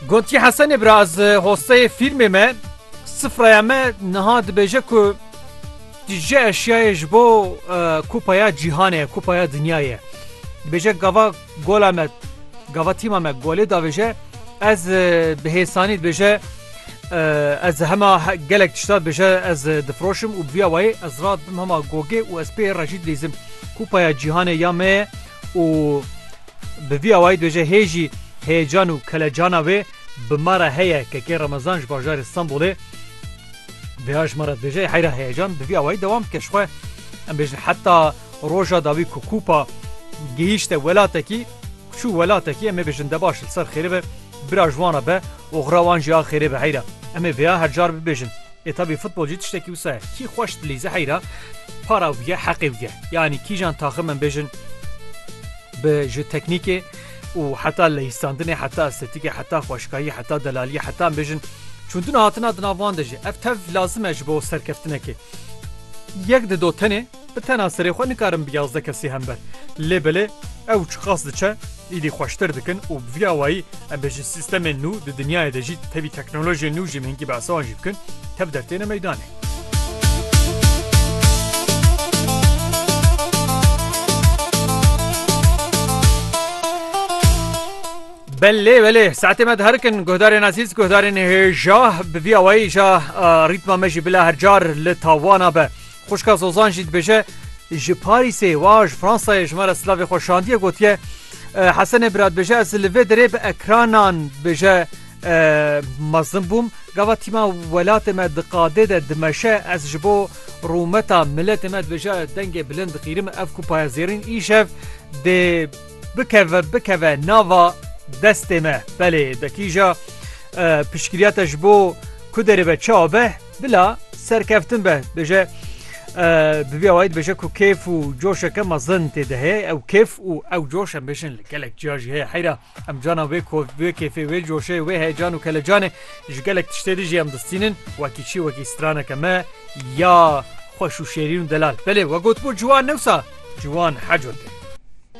Gotiye Hesenê biraz hosteyê fîlmê me sifraya me niha dibêje ku tu ji eşyayê ji bo kupaya cîhanê kupaya dinyayê dibêje gava gola me gava tîma me golê davêje ez bi hêsanî dibêje ez hema gelek tişta dibêje ez difiroşim û biya wayê ez rat bim hema gogê û ez pê rejî dizim kupaya cîhanê ya me û Bi vî awayî dibêje hê jî heyecan û kelecana wê bi ma re heye kekê Remezan ji bajarê Stenbolê vêya ji ma re dibêje ê heyra heyecan bi vî awayî dewam dike jixwe em bêjin heta roja dawî ku kûpa gihîşte welatekî çû welatekî em ê bêjin debaş li ser xêrê be bira ji wan re be Oxira wan jî a xêrê be heyra. Em ê vêya her car bibêjin. Ê tabî futbol jî tiştekî wisa ye. Kî xweş dilîze heyra para wî ye heqê wî ye. Yanî kîjan taxim em bêjin bi ji teknîkê û heta lehîstandinê heta estetîkê heta xweşikayî heta delaliyê heta em bêjin çûndina hatina di nav wan de jî ev tev lazim e ji bo serkeftinekê. Yek dido tenê. Bi tena serê xwe nikarin bi yazdeh kesî hem ber. Lê belê ew çi qas diçe, îdî xweştir dikin û bi vî awayî em bê ji sîstemên nû di dinyayê de jî tevî teknolojiyên nû jî mihînkî behsa wan jî bikin, tev dertêne meydanê. Belê belê saetê me diherikin guhdarên ezîz, guhdarên hêja bi vî awayî ja rîtma me jî bila her car li tawana be. Xwişka Zozan jî dibêje, Ji Parîsê wa ji Fransayê ji me re silavê xwe şandiye gotiye, Hesenê bira dibêje, Ez li vê derê bi ekranan dibêje mezin bûm. Gava tîma welatê me di qadê de dimeşe, ez ji bo rûmeta miletê me dibêje dengê bilind diqîrim, ev ku payezêrîn îşev dê bikeve bikeve nava destê me. Belê, de kîja piştgiriya te ji bo ku derê be çi abe? Bila serkeftin be dibêje Bibiya wayî dibêje ku kêf û coşeke mezin tê de heye ew kêf û ew coş em bêjin li gelek ciya jî heye heyra em cana wê wê kêfê wê coşê wê heyecan û kelecanê ji gelek tiştê dijî em distînin wekî çî wekî straneke me ya xweş û şêrîn û delal belê we gotbû ciwan newsa ciwan heco tê.